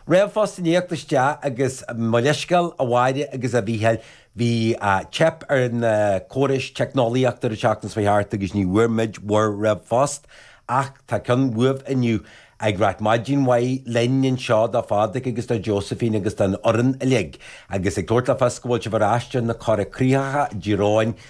Ríomhphost i ndiaidh theacht isteach agus mo leithscéal, a Mháire agus a Mhícheáil. Bhí teip ar na córais teicneolaíochta ar an tseachtain seo a chuaigh thart agus ní bhfuair muid bhur ríomhphost ach tá ceann uaibh inniu ag ráit maidin mhaith linn anseo do Phádraic agus do Josephine agus don fhoireann uilig agus ag tabhairt le fios go bhfuil sibh ar ais ar na coigríocha i dTír Eoghain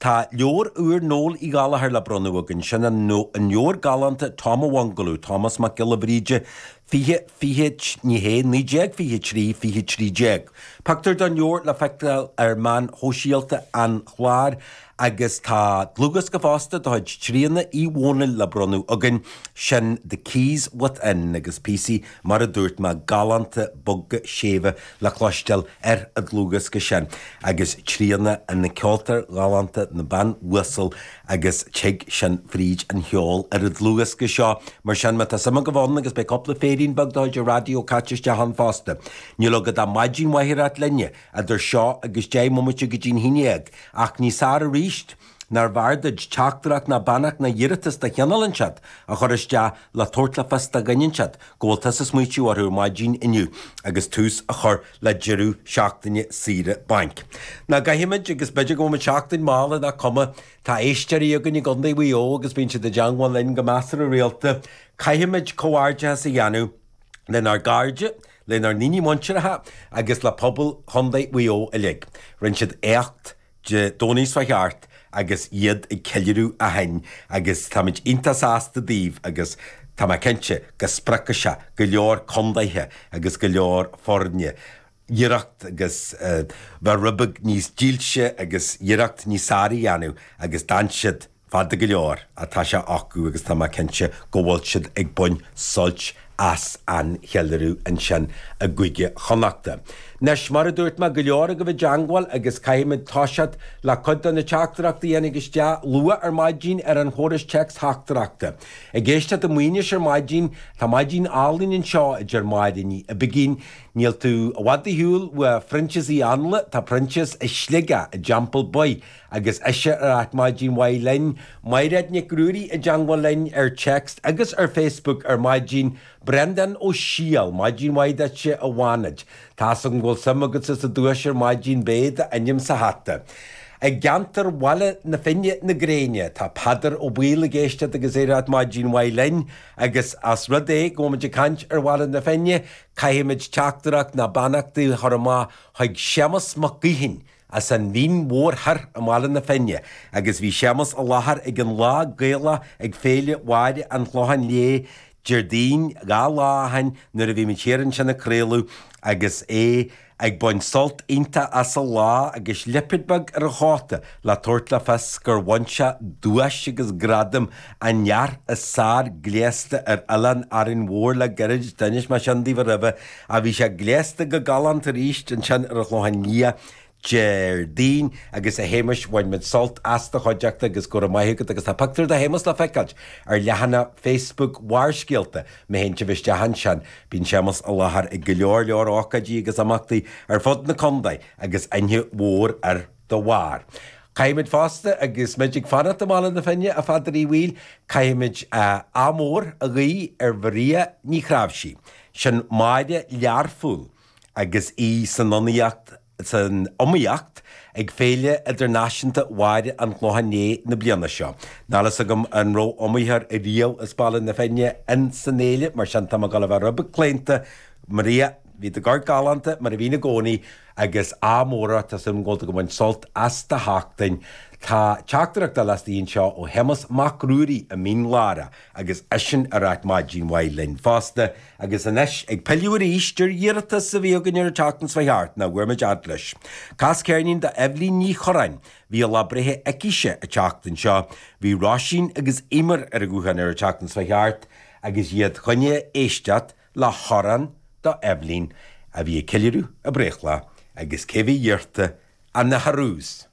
Tá leabhar úr Noel Uí Ghallchóir le bronnadh againn, sin an leabhar galánta Tom an Bhungaló, Tomás Mac Giolla Bhríde, fiche, fiche, ní hea, naoi déag fiche a trí, fiche trí déag. Pictiúr den leabhar le feiceáil ar mheáin shóisialta an chláir agus tá dlúthdhiosca fosta de chuid Thríona Ní Dhomhnaill le bronnadh againn, sin The Keys Within agus píosaí, mar a dúirt mé, galánta, boga, séimhe. le cloisteáil ar an dlúthdhiosca sin, agus Tríona ina ceoltóir ghalánta, ina bean uasal, agus tig sin fríd an cheol ar an dlúthdhiosca seo, mar sin má tá suim agaibh ann, agus beidh cúpla féirín beag de chuid an raidió caite isteach ann fosta. Níl agat ach maidin mhaith a ráit linne, idir seo agus deich mbomaite go dtí'n haon dhéag, ach níos fearr aríst, Nár bhfearr duit teachtaireacht ná beannacht ná iarratas de chineál inteacht a chur isteach le tabhairt le fios do dhuine inteacht go bhfuil tusa ag smaoitiú orthu maidin inniu agus tús a chur le deireadh seachtaine saoire bainc. Ná caithfimid agus b'fhéidir go bhfuimid seachtain mall ach nach cuma. Tá éisteoirí againn i gContae Mhaigh Eo agus bíonn siad i dteangmháil linn go measartha rialta. Caithfimid comhghairdeachas a dhéanamh lenár gcairde, lenár ndaoine muinteartha agus le pobal Chontae Mhaigh Eo uilig. Rinne siad éacht. Dé Domhnaigh seo a chuaigh thart agus iad ag ceiliúradh ó shin agus táimid iontach sásta daoibh agus tá mé cinnte go spreagfaidh sé go leor contaetha agus go leor foirne iarracht agus bheith rud beag níos dílse agus iarracht níos fearr a dhéanamh agus d'fhan siad Fada go leor ach tá sé acu agus tá mé cinnte go bhfuil siad ag baint suilt as an cheiliúradh ansin i gCúige Chonnacht. Anois, mar a dúirt mé, go leor agaibh i dteangmháil agus caithfimid toiseacht le cuid de na teachtaireachtaí a tháinig isteach luath ar maidin ar an chóras téacsteachtaireachta. Ag éisteacht i Maínis ar maidin, tá maidin álainn anseo, a deir Máire Ní Uiginn. Níl tú i bhfad ar shiúl ó Phroinsias Uí Anluain, tá Proinsias i Sligeach i dTeampall Baoith Agus ise ag ráit maidin mhaith linn, Maighréad Nic Ruairí i dteangmháil linn ar text agus ar facebook ar maidin, Breandán Ó Siadhail, maidin mhaith duitse i bhFánaid. Tá's agam go bhfuil suim agatsa sa duais ar maidin, beidh d'ainm sa hata. I gceantar Bhaile na Finne na Gréine, tá Peadar Ó Baoill ag éisteacht agus é ag ráit maidin mhaith linn, agus os rud é go bhfuimid ag caint ar Bhaile na Finne, caithfimid teachtaireacht ná beannacht a chur amach chuig Séamas Mac Gaoithín, as an Mhín Mhór Thoir i mBaile na Finne agus bhí Séamus i láthair ag an lá Gaelach ag Féile Mháire an Chlocháin Léith Déardaoin dhá lá ó shin nuair a bhí muid thiar ansin ag craoladh agus é ag baint sult iontach as an lá agus lipéad beag ar a chóta le tabhairt le fios gur bhain sé duais agus gradam An Fhear is Fearr Gléasta ar Oileán Árainn Mhór le gairid, d'inis mé sin daoibh aroimhe. Ach bhí sé gléasta go galánta arís ansin ar an Chlochán Liath Déardaoin agus, a Shéamais, bhain muid sult as do chuideachta agus go raibh maith agat agus tá pictiúr de Shéamas le feiceáilt ar leathanach Facebook Bharrscéalta, má théann sibh isteach ansin. Bíonn Séamas i láthair ag go leor leor ócáidí agus imeachtaí ar fud na contae agus aithne mhór air. dá bharr. Caithfimid fosta, agus muid ag fanacht i mBaile na Finne, a Pheadair Uí Bhaoill, caithfimid ádh mór a ghuí ar Mharia Ní Chnáimhsí. Sin Máire Learphúl agus í san, san iomaíocht ag Féile Idirnáisiúnta Mháire an Chlocháin Léith na bliana seo. Níl a fhios agam an raibh iomaitheoir riamh as Baile na Finne in san fhéile, mar sin tá mé ag dul a bheith rud beag claonta. Maria, bhí tú ag amharc galánta, mar a bhíonn i gcónaí. Agus ádh mór ort, tá súil agam go bhfuil tú ag baint sult as do sheachtain. Tá teachtaireacht eile istigh anseo ó Shéamas Mac Ruairí i Mín Lárach agus eisean ag ráit maidin mhaith linn fosta. Agus anois, ag pilleadh arís ar iarratas a bhí againn ar an tseachtain seo a chuaigh thart, nach bhfuair muid a fhad leis. Cas ceirnín do Eibhlín Ní Chorráin. Bhí a lá breithe aicise an tseachtain seo. Bhí Róisín agus Emer ar an ghuthán ar an tseachtain seo a chuaigh thart agus iad fá choinne éisteacht. Le hamhrán do Eibhlín a bhí ag ceiliúradh a breithlá agus cé bhí iarrtha ach na Heroes!